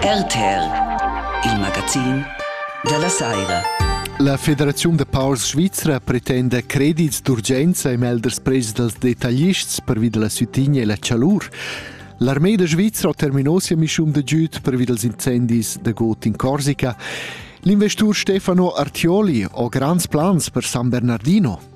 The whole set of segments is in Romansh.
RTL, il magazin dalla saira. La Federaziun da paurs svizra pretenda credits d'urgenza e melders prets dals detaglists pervi da la sütigna e la chalur. L'armée de Svizzera terminò sia mission de giud pervi dels incendis de Got in Corsica. L'investur Stefano Artioli ha grands plans per San Bernardino.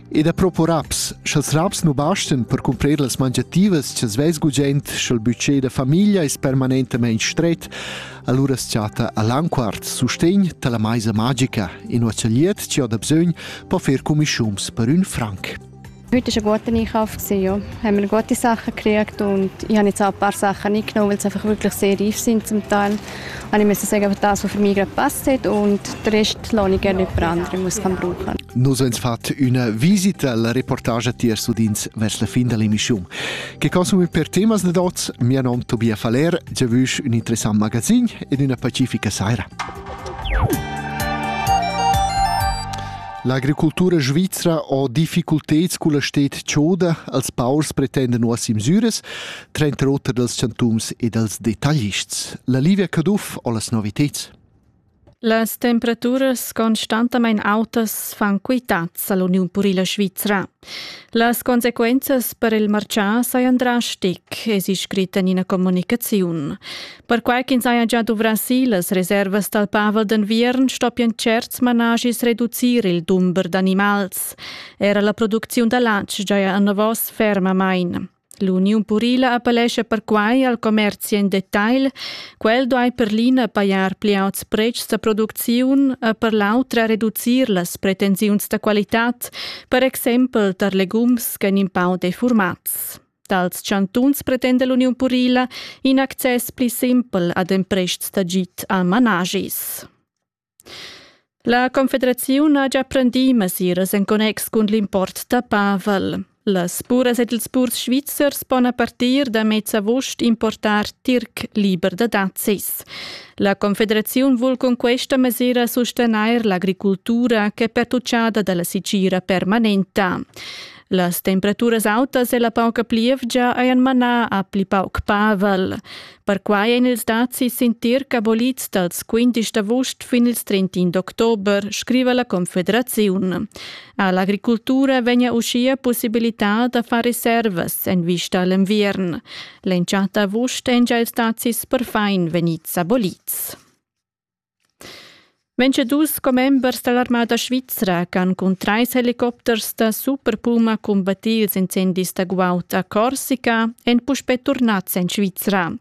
E da propo raps, scha'ls raps nu bastan per cumprer las mangiativas cha's vess gugent, scha'l budget da famiglia es permanentamaing stret, alura as chatta a Lanquart sustegn da la maisa magica, inua cha'l liet chi ho da bsögn po fer cumischuns per ün franc. Heute war ein guter Einkauf. Gewesen, ja. haben wir gute Sachen gekriegt und ich habe jetzt auch ein paar Sachen nicht genommen, weil sie einfach wirklich sehr reif sind zum Teil. Anime se sei gavettato für migra passet und rest l'onica le prendre mus can bruchen. Nus ens fat üna visita la reportage tier sudins vers la fin dell'emissione. Che consumi per temas de dots, mia nom Tobia Faler, giavüsch un interessant magazin ed una pacifica saira. L'agricultura svizra ha difficulteds culla stet choda, als paurs pretenden nuas imsures, Trenter oter dals chantums e dals detaglists. La Livia Caduff o las noviteds? Las temperaturas constantamain autas fan quitads a l'Uniun purila svizra. Las consequenzas per il marcià sajan drastic, es scrit en ina comunicaziun. Perquai ch'ins haja già duvrà si las reservas dal pavel d'enviern, stoppian certs managis reducir il dumber d'animals. Era la producziun da latg giaja enavos fermamain. L'uniun purila appellescha perquai al commerzi en detagl, quel duai per l'ina pajar pli auts pretschs da producziun e per l'autra reducir las pretensiuns da qualitad, per exempel tar legums ch'èn in pau defurmads. Dals chantuns pretenda l'uniun purila in access pli simpel ad emprests d'agid a managis. La Confederaziun ha gia prendì mesiras en connex cun l'import da pavel. Las buras ed ils purs svizzers pon a partir da mez august importar tirc liber da dazis. La Confederaziun vul cun questa mesira sustegnair l'agricultura ch'è pertuccada da la sicira permanenta. Las temperaturas autas e la pauca plievgia hajan manà a pli pauc pavel. Perquai ein ils dazis sin tirc abolids dals 15 d'avust fin ils 31 d'october, scriva la Confederaziun. All'agricultura vegna uschia possibilità da far reservas en vista a l'enviern. L'entschatta avust èn già ils dazis perfin vegnids abolids. dus commembers dall'armada svizra ch'han cun trais helicopters da Superpuma cumbattì ils incendis da guaud a Corsica èn puspè turnads en Svizra.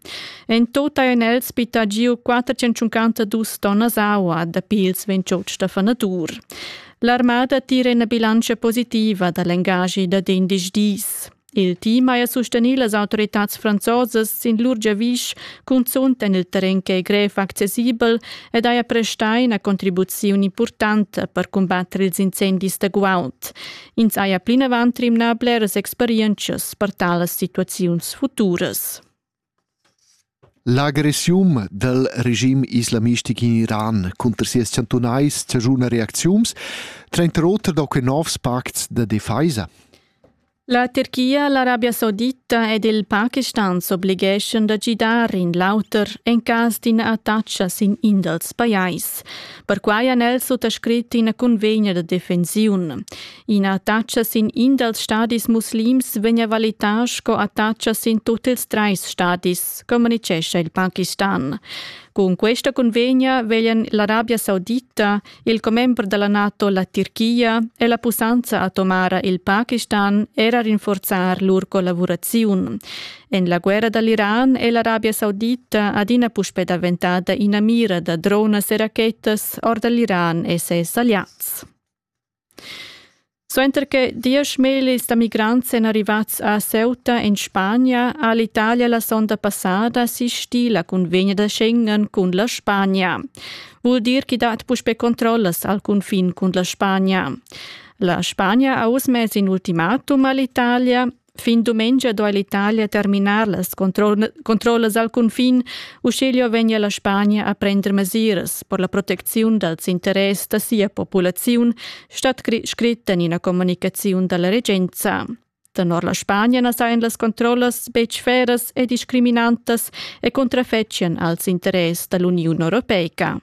En tot hajan els bittà giu 452 tonnas aua dapi ils 28 da fanadur. L'armada tira ina bilantscha positiva da l'engaschi dad indesch dis. Il team haja sustegnì las autoritads franzosas sin lur giavisch, cunzunt en il terren ch'è grev accessibel ed haja prestà ina contribuziun impurtanta per cumbatter ils incendis da guaud. Ins haja plinavant rimnà bleras experientschas per talas situaziuns futuras. L'agressiun dal regim islamistic in Iran cunter sias chantunais chaschuna reacziuns, tranter oter da quei novs pacts da defesa. La Tirchia, l'Arabia Saudita ed il Pakistan s'obligeschan da gidar in l'auter en cas d'ina attacca sin in dals pajais. Perquai han els suttascrit ina cunvegna da defensiun. Ina attacha sin in dals stadis muslims vegn valità sco attacha sin tut ils trais stadis, communitgescha il Pakistan. Cun questa convegna veglian l'Arabia Saudita, il commember della NATO la Tirchia e la pussanza atomara il Pakistan era rinforzar lur collaboraziun. En la guerra dall'Iran è l'Arabia Saudita adina puspè daventada ina mira da dronas e rachetas ord l'Iran e ses aliats. Suenter che diesch millis da migrants èn arrivads a Ceuta en Spagna ha l'Italia la sonda passada sistì la cunvegna da Schengen cun la Spagna. Vul dir ch'i dat puspè controllas al cunfin cun la Spagna. La Spagna ha oz mess in ultimatum a l'Italia Fin dumengia duai l'Italia terminar las controllas al cunfin, uschiglio vegnia la Spagna a prender mesiras per la protecziun dals interess da sia populaziun, stat scrit en ina communicaziun da la regenza. Tenor la Spagna na sajan las controllas betg feras e discriminantas e contrafettian als interess da l'Uniun Europeica.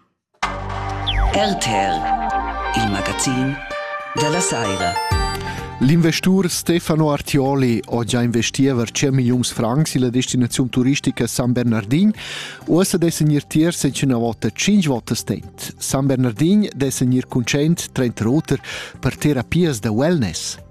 RTL, il magazin della saira. L'investur Stefano Artioli ho già investì over 100 milliuns francs illa destinaziun turistica San Bernardin. Uossa dess gnir tier secüna vota 5 votas tent. San Bernardin dess gnir cuncent 30 roter per terapias da wellness.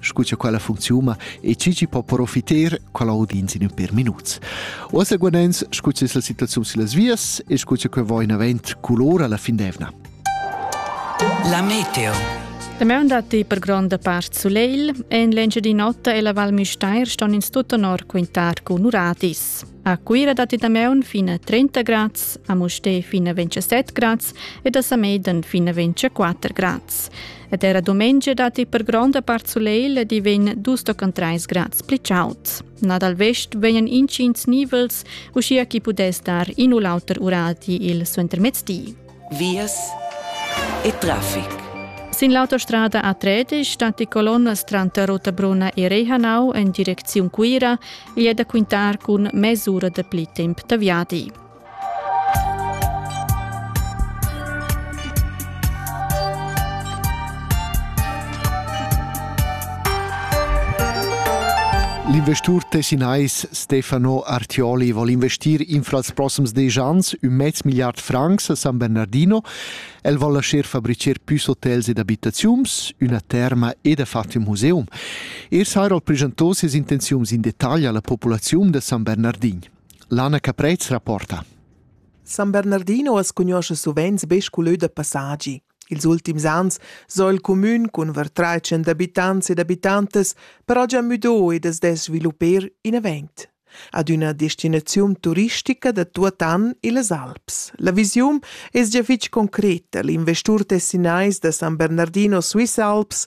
scu cha quella funcziuma e chi chi po profiter quella audienza in per minuts. O seguanens, scu cha es la situaziun sillas vias e scu cha que va in avant culora la fin d'evna. La meteo La maun dat per gronda part sulegl e in l'Engiadin'Ota e la Val Müstair ston ins tut onor quintar cun uradis. A Cuira datti da maun fin a 30 grads, a Mustè fin a 27 grads ed a Samedan fin a 24 grads. ed era dumengia datti per gronda part sulegl di vegn dus tochen treis grads pli chaud. Na dal vest vegnan intgins nivels, uschia chi pudess dar in u l'auter urati il suentermezdi. Vias e traffic. Sin l'autostrada A13 stat die colonnas tranter Rotabrunna e Rehanau en direcziun Cuira e è da quintar cun mesura de pli temp da viadi. L'investur tessinais Stefano Artioli vol investir infra els proxims desch ans ün mez milliard francs a San Bernardino. El vol lascher fabricher püs hotels ed abitaziuns, üna terma ed ha fatto ün museum. Er Sairol preschantò ses intenziuns in detagl alla populaziun da San Bernardin. Lana Caprez rapporta. San Bernardino as cugnuoscha suvenz be scu lö da passagi. Ils ultims ans s'ho il cumün cun var trais abitants ed abitantas però già müdo ed as dess svilupper in event. Ad üna destinaziun turistica da tuot an illas Alps. La visiun es già fich concreta. L'investur tessinais da San Bernardino Swiss Alps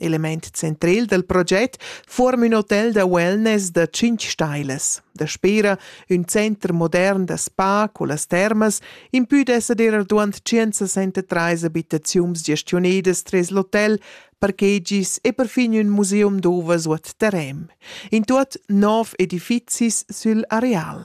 Element central dal proget fuorm ün hotel da wellness da tschinch stailas. Daspera ün center modern da spa cullas termas impü d'esser dir arduant 163 abitaziuns gestionedas tres l'hotel, parkegis e perfin ün museum d'ovas u terem. In tuot nov edifizis sül areal.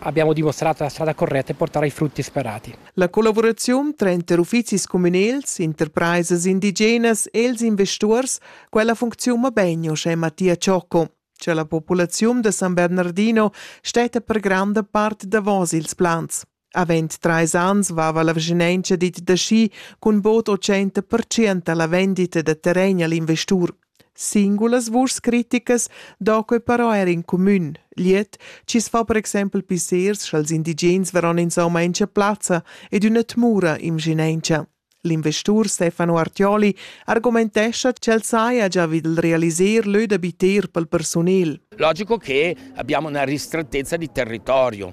Abbiamo dimostrato la strada corretta e portare i frutti sperati. La collavuraziun tranter uffizis communals, interpresas indigenas e ils investurs, quella funcziuna bene, uschè Mattia Ciocco. C'è la popolazione da San Bernardino stetta per granda parte davos ils plans. Avend trais ans vava la vicinanza dit da schi cun bod 80% alla vendita da terren agl investur. Singulas vuschs criticas do quei però er in cumün. Gliet, chi's fa per exempel pissers scha'ls indigens varon insomma in sia plazza ed üna tmura imschinaintscha. L'investur Stefano Artioli argumentescha ch'el saja già vid il realiser lö da biter pel persunel. Logico che abbiamo una ristrettezza di territorio.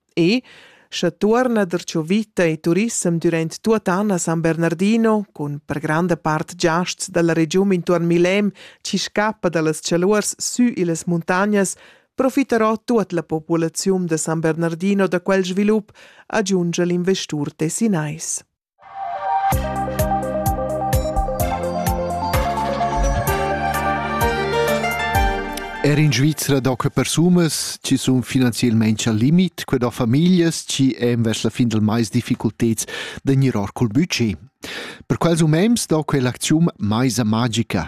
E, sche tuorna der cho vita e turissem durant tuot an a San Bernardino, cun per granda part giasts dalla regiun intuorn Milem chi scappa dallas chaluors sü illas muntagnas, profitarò tuot la populaziun da San Bernardino da quel svilup, agiungia l'investur tessinais. Er in Svizra d'ocra persumas chi sun finanzielmaing al limit, que da famiglias chi èn vers la fin dal mais difficulteds da gnir or cul budget. Per quels umens do quell'acziun maisa magica.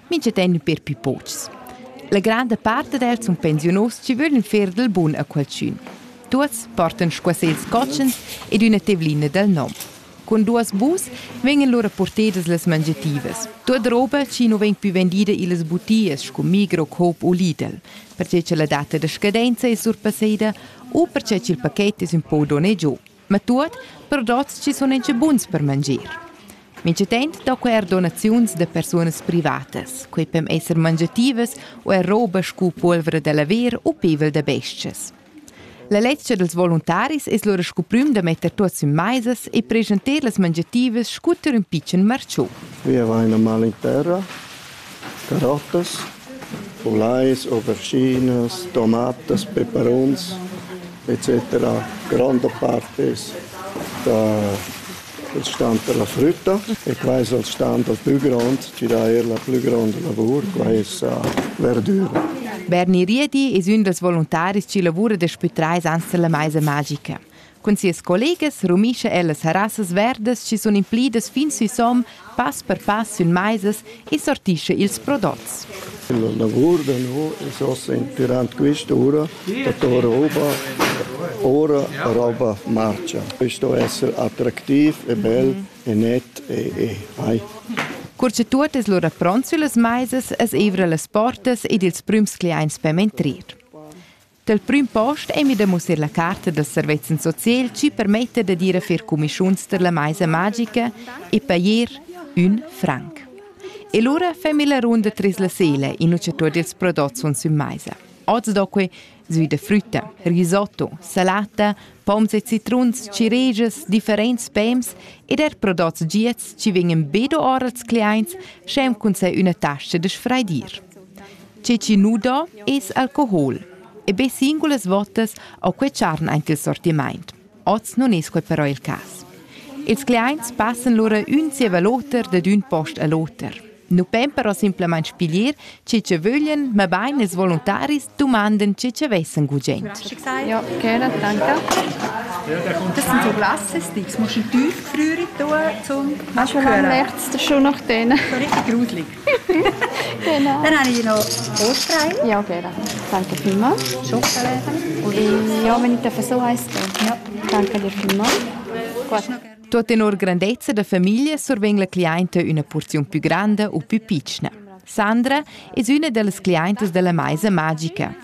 Mincha tegn per pü pochs. La granda part ed els sun pensiunus chi vöglan fer dal bun a qualchün. Tuots portan squasels cotschens ed üna tevlina dal nom. Cun duos bus vegnan lura portedas las mangiativas. Tuot roba chi nu vegn pü vendida illas butias scu Migro, Coop u Lidl, perche cha la data da scadenza es surpasseda u perche ch'il paket es ün po donné giò. ma tuot per dots chi sun incha buns per mangir. Minchatant do que eir donaziuns da persunas privatas. Quei pem esser mangiativas u er roba scu pulvra da laver u pevel da bes-chas. La ledscha dels voluntaris es lura scu prüm da metter tuots in maisas e preschanter las mangiativas scu ter ün pitschen marciu. Vi avaina mal in terra Carottas, pulais, auberginas, tomatas, peperuns etc. gronda part es da il stand da la frütta e qua es il stand dal plü grond chi dà eir la plü gronda lavur, qua es verdüra. Berni Riedi es ün dals voluntaris chi lavura daspü trais ans da la maisa magica. Cun sias collegas rumischa ella serassas verdas chi sun implidas fin süsom, pass per pass sün maisas e sortischa ils prodots. La lavur da no es ossa inpirant quista ura datora oba ora roba marcha. E sto esser attractiv e bel e net e e hai. Cur cha tuot es lura pront süllas maisas es eivra las portas ed ils prüms cliaints per mentrir. Dal prüm post ei mi da mussar la carta dals servezzan socials chi permetta da dir a fer cumischuns tar la maisa magica e pajer ün franc. E lura fe mi la runda tras la sela in ucciatur dils prodots sun sün maisa. Oz do que sui de frütta, risotto, salata, poms e citruns, ciregias, differents pems ed er prodots giats ci vegnan be do ora als cliaints, schem cun sai üna tascha de sfraidir. Tge chi nu do es alcohol. E be singulas votas ho quai charn aint il sortimaint. Oz nun es quai però il cas. Ils cliaints passan lura ün zieva l'oter dad ün post a l'oter. Nu pon però simplamaing piglier chi cha vöglian, mabain ils voluntaris dumandan chi cha vessan gugent. Ja, gerne, danke. Das sind so Glasses, das musst du tief gefriert tun, um das zu hören. Schon lange nichts, das ist schon nach denen. So richtig gruselig. Genau. Dann habe ich noch Ostrein. Ja, okay, dann danke vielmals. E ja, wenn ich darf so heißen, ja. danke dir vielmals. Gut. Tut in nur grandezza da famiglia survegn la clienta una porziun più grande o più piccina. Sandra è una delle clienti della maisa magica.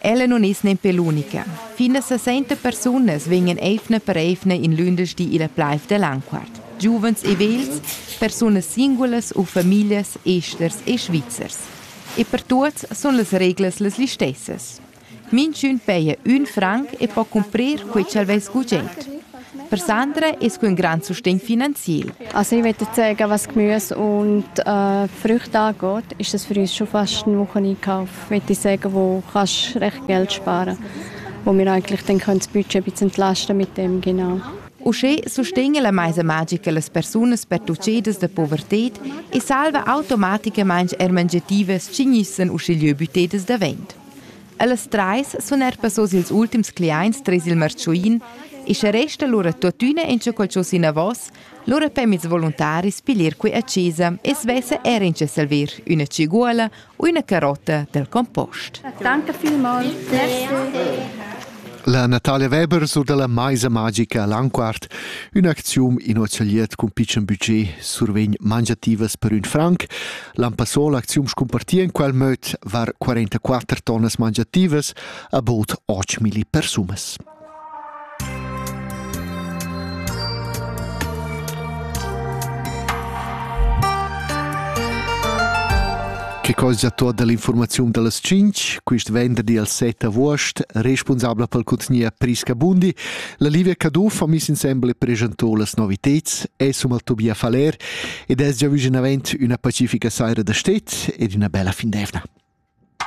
Ella nun es nempe l'unica. Fin a sesenta persunas vegnan eivna per eivna in lündeschdi illa plaiv da Lanquart. Giuvens e vegls, persunas singulas u famiglias esters e svizzers. E per tuots sun las reglas las listessas. Minchün paja ün franc e po cumprir quai cha'l vess gugent. Per Sandra es que ün grand sustegn finanziel. Also ich möchte sagen, was Gemüse und äh, Früchte angeht, ist das für uns schon fast ein Wocheneinkauf. Ich möchte sagen, wo kannst recht Geld sparen, wo wir eigentlich dann das Budget ein bisschen entlasten mit dem genau. Uschè sustegna la maisa magica las persunas pertuchadas da povertad e salva automaticamain er mangiativas ch'ignissan uschigliö büttedas da vent. Ellas trais sun eir passos ils ultims cliaints tres il marchuin e sche resta lura tuottüna inchaqual chos inavos, lura pem ils voluntaris piglier qui a chesa e svesse er incha salver üna ciguola u üna carotta dal compost. Danke vielmals. Merci. La Natalia Weber sur dalla Maisa magica all'Anquart, ün'acziun in hotelier cun pitschen budget survegn mangiativas per ün franc. L'Ampassol acziun scumpartia in quel möd var 44 tonnas mangiativas a bod 8.000 persunas. che cosgia tuot dall'informaziun dallas tschinch, quist venderdi al 7 avuost, responsabla pel contgnier Prisca Bundi, la Livia Caduff ha miss insembel e preschantò las noviteds, es um al Tobias Faller ed es già viginavent üna pacifica saira da stet ed üna bella fin d'eivna.